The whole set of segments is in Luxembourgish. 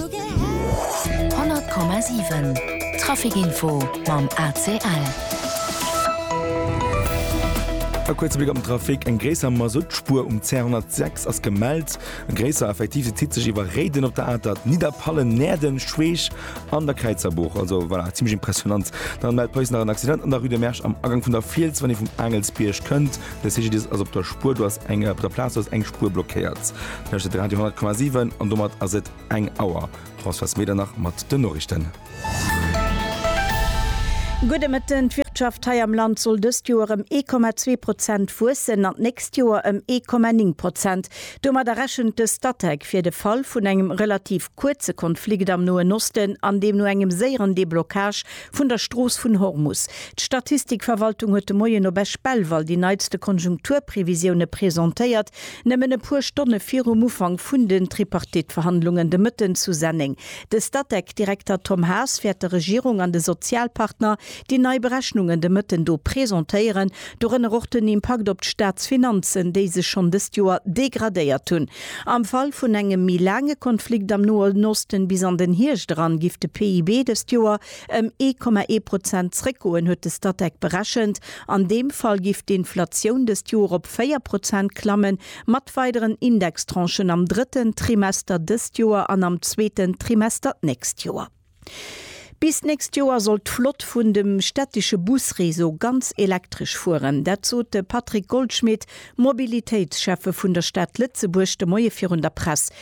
100,7 Trafic-Info mam ACL. E kuerze Bléck op den Trafic, Eng gréisser Masuttspuer um CR 106 ass gemellt. E gréisser effektiv, se zitt sech iwwer Réiden op der Atert, Nidderpallen, Näerden, Schweech an der Kräizerbuch. Also voilà, zimmlech impressionant. Dann mellt d'Police nach en Accident an der Rue de Mersch am Agank vun der Fiels, wann ee vum Aangelsbierg kënnt. De CGDIS ass op der Spuer, do ass eng op der Plaz, do ass eng Spuer blockéiert. Hëscht et Radio 10,7 an domat ass et eng Auer. Françoise Smeder nach mat den Noriichten. Gudde Mëtten, D'Wirtschaft hei am Land soll dëst Joer ëm 1,2 Prozent wuessen an d'nächst Joer ëm 1,9 Prozent. Domadder rechent de Statec fir de Fall vun engem relativ kuerze Konflikt am Noen Osten an deemno engem séieren Deblockage vun der Strooss vun Hormus. D'Statistikverwaltung huet de Moien op Esch-Belval déi neitste Konjunkturprevisioune presentéiert, Nëmmen e puer Stonne virum Ufank vun den Tripartite-Verhandlungen de Mëtten zu Senneng. De Statec-Direkter Tom Haas wäert der Regierung an de Sozialpartner déi nei Berechnungen de Mëtten do presentéieren, dorënner och den Impakt op d'Staatsfinanzen, déi sech schonn dëst Joer degradéiert hunn. Am Fall vun engem méi laange Konflikt am Noen Osten, bis an den Hierscht eran, géif de PIB dëst Joer ëm ee Komma ee Prozent zréckgoen, huet de Statec berechent. An deem Fall giff d'Inflatioun dëst Joer op véier Prozent klammen, mat weideren Indextranchen am drëtten Trimester dëst Joer an am zweeten Trimester d'nächst Joer. Bis d'nächst Joer soll d'Flott vun dem städtische Busréseau ganz elektresch fueren. Dat sot de Patrick Goldschmit, Mobilitéitsschäffe vun der Stad Lëtzebuerg, de Moie virun der Press.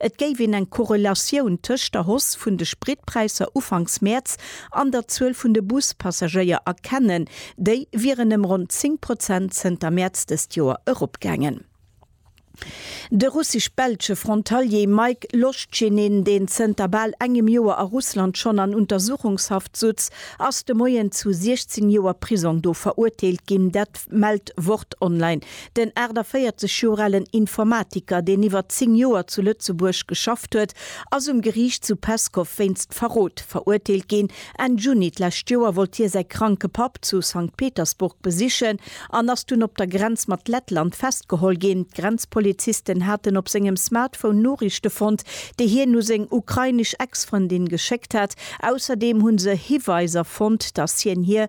Et géif een eng Korrelatioun tëscht der Hausse vun de Spritpräisser ufanks Mäerz an der Zuel vun de Bus-Passagéier erkennen, déi wieren ëm ronn 10 Prozent zënter Mäerz dëst Joer eropgaangen. De russesch-belsche Frontalier Maik Loschinin, deen zënter bal engem Joer a Russland schonn an Untersuchungshaft sutz, ass de Moien zu 16 Joer Prisong do verurteelt ginn, dat mellt Wort Online. Den 48 Joer alen Informatiker, deen iwwer 10 Joer zu Lëtzebuerg geschafft huet, ass um Geriicht zu Peskow wéinst Verrot verurteelt ginn. Enn Juni d'lescht Joer wollt hie säi kranke Papp zu Sankt Petersburg besichen an ass dunn op der Grenz mat Lettland festgeholl ginn. D'Grenzpolizisten haten op sengem Smartphone Noriichte fonnt, déi hien u seng ukrainesch Ex-Frëndin geschéckt hat. Ausserdeem hu se Hiweiser fonnt, datt hien hir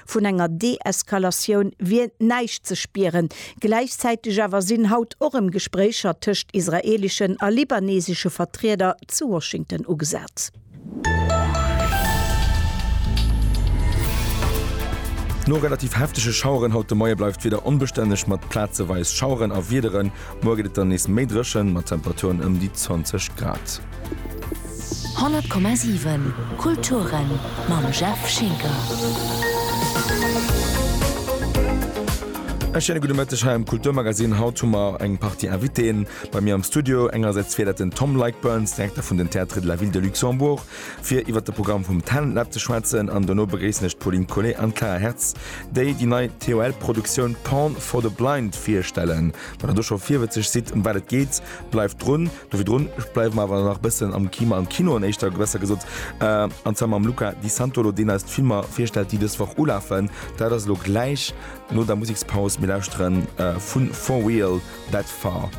Vun enger Deeskalatioun wier näischt ze spieren. Gläichzäiteg awer sinn haut och erëm Gespréicher tëscht israeeleschen a libanesesche Vertrieder zu Washington ugesat. No relativ heftege Schaueren haut de Moie bleift d'Wieder onbestänneg mat plazeweis Schaueren a Wiederen. Muer gëtt et dann nees méi dréchen, mat Temperaturen ëm déi 20 Grad. 100,7 Kulturen mam Jeff Schinker. E schéine gudde Mëtteg hei am Kulturmagazin. Haut hu mer eng Partie Invitéen bei mir am Studio. Engersäits fir dat den Tom Leickburns, Direkter vun den Théâtres de la Ville de Luxembourg, fir iwwer de Programm vum Talent Lab ze schwätzen. An dono begréissen ech d'Pauline Collet an d'Clara Hertz, déi déi nei TOL-Produktioun Porn for the Blind virstellen. Wann der do scho virwëtzeg sidd, ëm wat et geet, bleift drun. Do virdrun bleiwe mer awer nach bëssen am Kima, am Kino an éischter besser gesot, an zwar mam Luca Di Santolo, deen eis d'Filmer virstellt, déi dës Woch ulafen. Dat ass elo gläich no der Musekspaus. Mir lauschteren vu Four Wheel That Far.